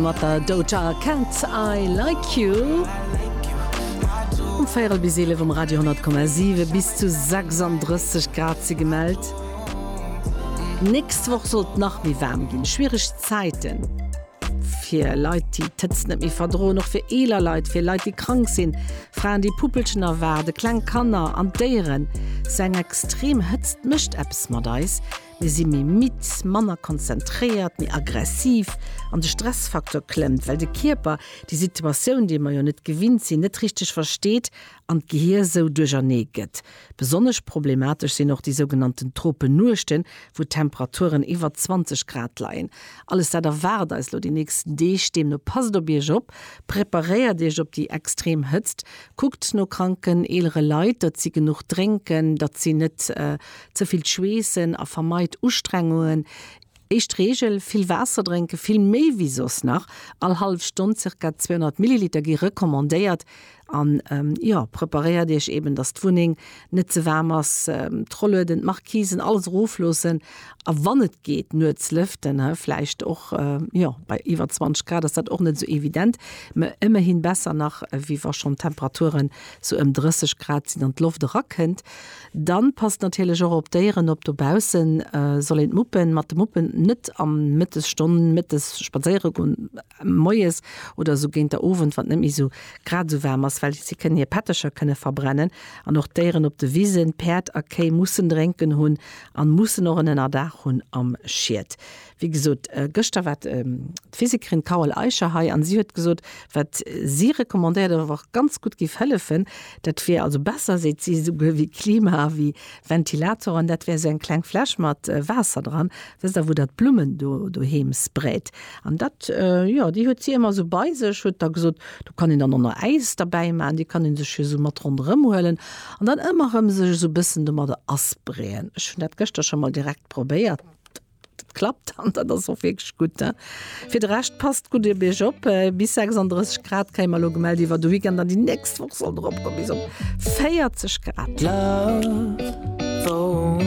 Mat der Doja Cat, I like you. Um véierel bis eelef um Radio 100,7. Bis zu 36 Grad si gemellt. D'nächst Woch soll et nach méi waarm ginn. Schwiereg Zäiten fir Leit, déi d'Hëtzt net méi verdroen. Och fir eeler Leit, fir Leit, déi krank sinn, Fraen, déi Puppelchen erwaarden, kleng Kanner an Déieren. Esou eng extrem Hëtzt mécht eppes mat eis. Mir si méi midd, manner konzentréiert, méi aggressiv an de Stressfaktor klëmmt, well de Kierper déi Situatioun, déi mer jo net gewinnt sinn, net richteg versteet an d'Gehier esou duerchernee gëtt. Besonnesch problematesch sinn och déi sougenannten Tropennuechten, wou d'Temperaturen iwwer 20 Grad leien. Alles dat erwaart eis elo déi nächsten Deeg. Deemno passt op Iech op, preparéiert Iech op déi extrem Hëtzt, kuckt no kranken, eelere Leit, datt si genuch drénken, datt si net Ze vill schweessen a vermeit Ustrengungen. Éischt Reegel, vill Waasser drénken, vill méi wéi soss nach. All hallef Stonn zirka 200 Milliliter gi recommandéiert. An jo, preparéiert Iech eben, dass d'Wunneng net ze waarm ass. D'Rollueden, d'Marquisen, alles erofloossen a wann et geet nuets lëften. Vläicht och, jo, bei iwwer 20 Grad ass dat och net esou evident, mä ëmmerhi besser nach, wéi wa schonn d'Temperaturen sou ëm 30 Grad sinn an d'Loft erakënnt. Dann passt natierlech och op d'Déieren op. Dobaussen soll een d'Muppen mat de Muppen net am Mëttes Stonn, Mëttes spadséiere goen, Moies oder esou géint der Owend, wann et net méi esou grad esou waarm ass, well si kënnen hir Pettercher kënnen verbrennen. An och d'Déieren op de Wisen, Päerd a Kéi, mussen drénken hunn an mussen och en Ënnerdaach hunn am Schied. Wéi gesot, gëschter war d'Physikerin Carole Eicher hei an si huet gesot, wat si recommandéiert awer och ganz gutt géif hëllefen, dat wier also besser, seet si, esouguer wéi Klima a wéi Ventilatoren, dat wär esou eng kleng Fläsch mat Waasser dran, wësst Der, wou Der d'Blummen do doheem sprayt. An dat, jo, déi huet si ëmmer esou bei sech, huet da gesot, do kann een dann och nach Äis derbäi maachen, déi kann ee sech jo esou mat ronderëm huelen an dann ëmmer erëm sech esou e bëssen domadder asprayen. Ech hunn dat gëschter scho mol direkt probéiert. Dat klappt an dat ass och wierklech gutt. Äh. Fir de Rescht passt gutt Dir Bierg op. Äh, bis 36 Grad kréie mer elo gemellt iwwer de Weekend an déi nächst Woch soll drop go bis op 40 Grad. Love, oh,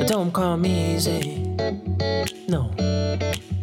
don't come easy. No.